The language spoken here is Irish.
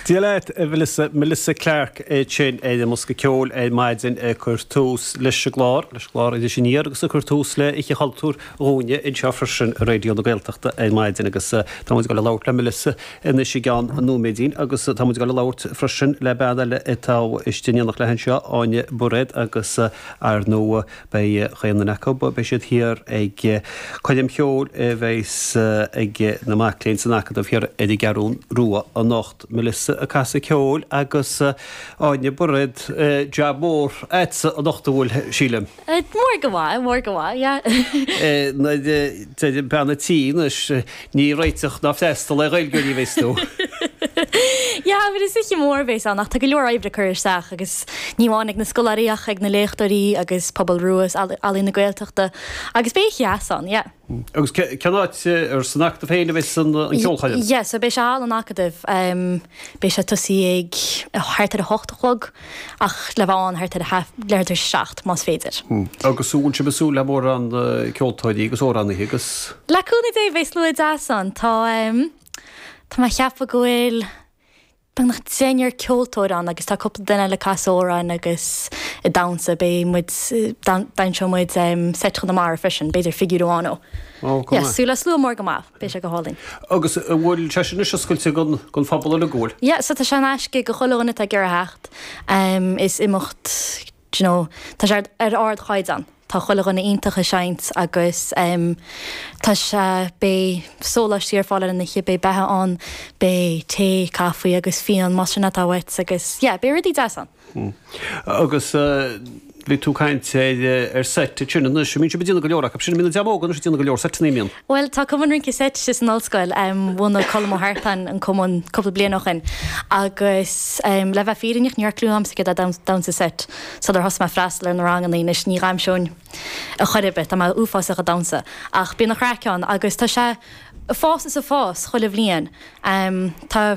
Dia leat, a Melissa, Melissa Clarke í sin, ar an mbosca ceoil ar maidin ag cur tús leis an gclár, leis an gclár Iris Aniar agus ag cur tús le Oíche Chultúir dhúinne anseo freisin ar Raidió na Gaeltachta ar maidin agus tá muid ag dul ag labhairt le Melissa anois i gceann nóiméidín agus tá muid ag dul ag labhairt freisin le bean eile atá istigh in éineacht léi anseo, Áine Bairéad agus ar ndóigh Beidh chaon duine acu, beidh siad thiar ag coirm cheoil a bheas ag na mac léinn san Acadamh thiar ar an gCeathrú Rua anocht, Melissa ag casadh ceoil agus Áine Bairéad, jab mór a'tsa anocht, an bhfuil, sílim? Mór go maith, mór go maith, yeah. Bean a' tí anois. Ní réiteach ná freastal é Gaeilgeoirí a bheith sna. Yeah, but is oíche mór a bheas ann ach tá go leor oibre curtha isteach agus ní amháin ag na scoláirí ach ag na léachtóirí agus pobal rua is Ealaín na Gaeltachta agus beidh oíche dheas ann, yeah. Agus cén áit ar san acadamh féin a bheas an cheolchoirm? Yeah, so beidh sé thall san acadamh, beidh sé ag tosaí ag thart ar a hocht a chlog. ach le bheith ann thart ar leathuair tar éis a 7, más féidir. Agus an bhfuil sibh ag súil le mórán ceoltóirí agus amhránaithe agus. Le cúnamh Dé beidh slua deas ann. Tá tá mé a cheapadh go bhfuil beagnach deichniúr ceoltóir ann agus tá cúpla duine eile ag casadh amhráin agus ag damhsa. Beidh muid damhsóidh muid Seit Chonamara freisin, b'fhéidir figiúr amháin ó. Ó, cool. Yeah, súil le slua mór go maith. Beidh sé go hálainn. Agus an bhfuil sé sin anois oscailte don phobal uilig go bhfuil? Yeah, so tá sé in aisce do chuile dhuine atá ag iarraidh theacht. Is imeacht, do you know, tá sé ar ardchaighdeán, tá chuile dhuine iontach ag seinnt agus tá sé, beidh sóláistí ar fáil ar an oíche, beidh beatha ann, beidh tae, caife agus fíon más sin atá uait agus yeah, beidh rudaí deasa ann. Agus bhí tú ag caint ar seit ansin anois, bíonn sibh ag déanamh go leor acu sin, an mbíonn an dream óg anois ag déanamh go leor seiteanna, an mbíonn. Bhuel, tá Cumann Rince Seit istigh san ollscoil. Bhunaigh Colm Ó hArtáin an cumann cúpla bliain ó shin agus le bheith fírinneach ní raibh clue agamsa céard é damhsa seit sular thosaigh mé ag freastal ar na ranganna anois. Ní dhamhsóinn ar chor ar bith, tá mé uafásach ag damhsa ach bíonn an-chraic ann agus tá sé ag fás is ag fás chuile bhliain. Tá.